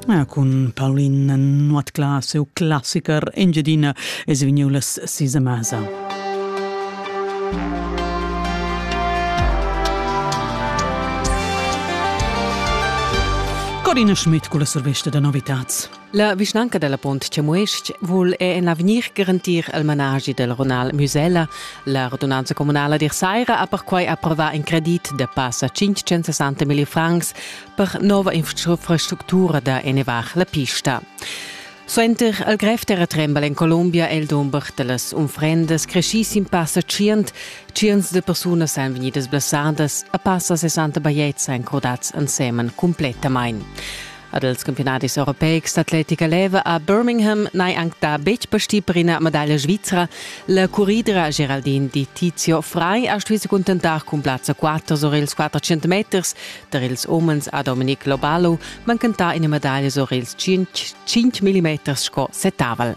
Ja, cun Paulin Nuotcla, seu classiker Engiadina, es vegniu las sis a masa. Corina Schmidt culla survesta da novitats. La vischnanca della Pont Chamues-ch vul è en l'avegnir garantir il managi del Ronal Musella. La radunanza comunala d'Irsaira ha perquai approva in credit de passa 560.000 francs per nova infrastructura da ennevar la pista. Suenter al grev terratrembel en Colombia è il dumber delles unfrendas crescis in passa 100. Cients de persunas han venidas blessadas, a passa 60 bajetts han crodats ensemen completamain. Ad els campionadis europeics d'atletica leva a Birmingham n'hai anc dà betg pastì per ina medaglia svizra. La curridra Geraldine di Tizio Frei ha stuì se cuntentar cun plazza 4 sur ils 400 meters tar ils umens a Dominic Lobalo, mancantà ina medaglia sur ils 5 mm sco setavel.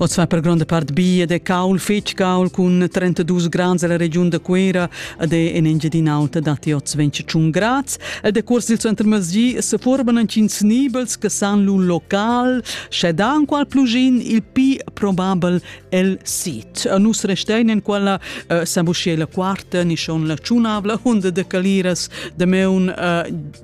Oz fa per gronda part bia de caul fetg caul cun 32 grads alla regiun da Cuera ed è en Engiadin'Alta datti oz 21 grads e de cuors dil center masgi se forban antschins nibels che san lu local sche da qual plugin il pi probabel el sit. Nus restein en quella uh, eh, sabuschie la quarta ni schon la tschunavla onda de caliras de meun uh,